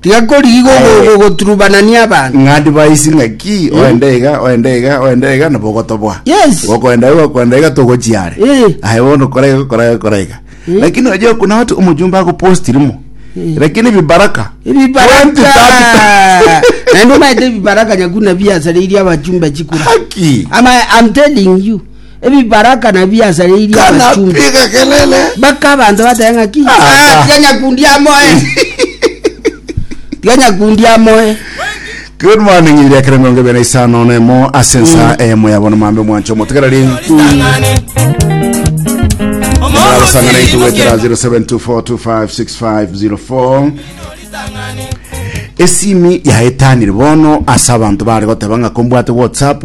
Tigakorigigwa ogo- Eh. ogoturubanania abanto. ng'a ndibaisi ng'aki oende iga oende iga oende iga nabo ogotobwa Yes. gokoenda iga gokoenda iga togochia are Eh. aye bono kora iga kora iga kora iga lakini oje okuna watu omojumbe agopostirimo lakini bibaraka Ebibaraka. Naende omanyete ebibaraka nyakuna biasareirie abachumba chikura. haki Ama, I'm telling you. Ebibaraka nabiasareirie abachumba. Kanapiga kelele. Baka abanto batebe ng'a ki? Ah, tiga nyakundi amoe. Tiga nyakundi amoe. Good morning ibiri ekere mirongo ebere na isano na emo ase ensa eyemo yabo na mambe mwancho motegereri arasangana itugwetera 0724256504 esimi yaetanire bono ase abanto bare goteba ng'a kombwate whatsapp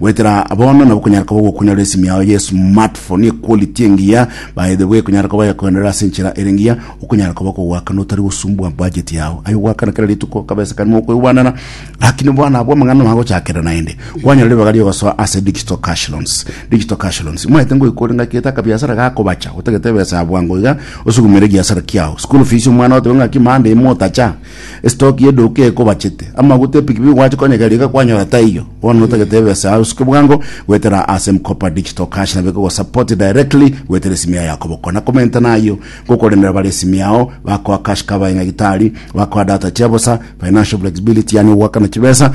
Goetera bono nabo okonyara koba gokonyora esimi yao ye smartphone equality engiya baede bwe ekonyara koba yakoendera ase enchera ere engiya okonyara koba kogoakana otari gosumbwa budget yao aye ogoakana kera rituko kabesa kari mokoigwanana lakini bono abwo amang'ana magochakera naende kwanyora ribaga riogosoa ase digital cash loans digital cash loans mwaete ngoikore ng'aki gete akabiasara gakobacha otagete ebesa ya bwango iga osugumere egiasara kiao school fees omwana otebe ng'aki monday motacha Estoki y'eduka ekobachete. Amaguta epikipiki gwache konya egari iga kwanyora taiyo. Bono notagete ebesa yaye osuke bwango goetera ase M-Kopa Digital Cash nabo eko gosupport directly goetera esimi yaye yakoboko. Na komenta nayio ngokoremera bare esimi yao bakoa cash cover y'nyagitari, bakoa data chia bosa, financial flexibility yaani ogoakana chibesa,